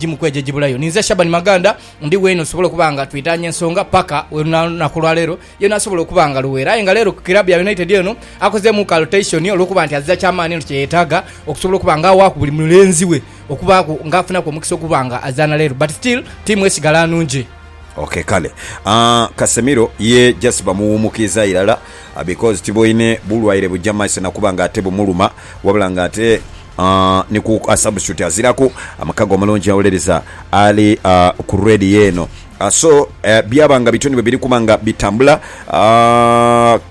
egimu ku egyo egibulayo. Ninze Shaban Maganda, ndi weene osobola okuba nga twitaanya ensonga paka olunaku lwa leero, yena asobola okuba nga Luweera. Aye nga leero ku kiraabu ya United eno akozeemu ka rotation olw'okuba nti azira kya maani eno kye yetaaga okusobola okuba nga awaaku buli mulenzi we okubaaku nga afunaku omukisa okuba nga azaana leero but still tiimu esigala nungi. Ok kale Casemiro ye just bamuwuumukiiza irala because tiboine bulwaire buja maiso na kuba nga ate bumuluma wabula nga ate Ni ku a substitute aziraku mukago omulungi awuliriza ali ku radio eno. So byaba nga bityo ni bwe biri kuba nga bitambula.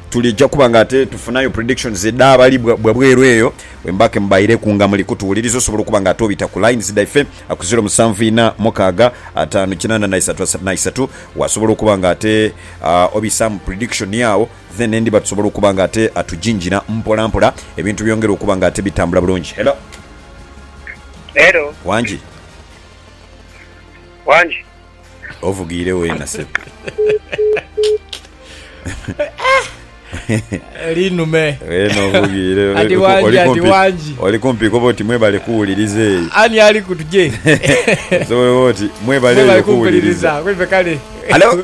Tulija kuba nga ate tufunayo predictions edh'abali bwa bweru eyo bwe muba ke mubaireku nga muli kutuwuliriza. Osobola okuba nga ate obita ku lines dhaife ku ziro musanvu ina mukaaga ataanu kinana na isatu asatu na isatu. Wasobola okuba nga ate obisaamu prediction yo agho. Then endiba tusobola okuba nga ate atujinjina mpola mpola, ebintu byongere okuba nga ate bitambula bulungi. Hello. Hello. Wangi. Wangi. Ovugiire weena ssebo. Linume. Weena ovugiire. Ati wangi, ati wangi. Oli kumpi koba oti mwebale kuwuliriza eyo. Ani ali ku tuje? Osobola oba oti mwebale eyo kuwuliriza. Mwebale kumpuliriza. Kweife kale. Hello.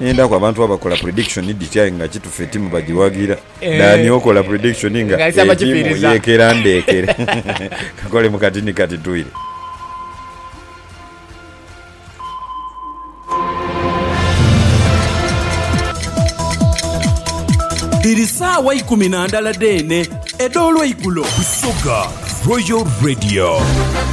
Endaku abantu abakola prediction dhiti aye nga kitufu etimu bajiwagira Dani okola prediction nga etimu yekera ndekere kakole mu kati ni kati toire. Dhiri saawa ikumi na ndala dheene edh'olweigulo. Busoga Royal Radio.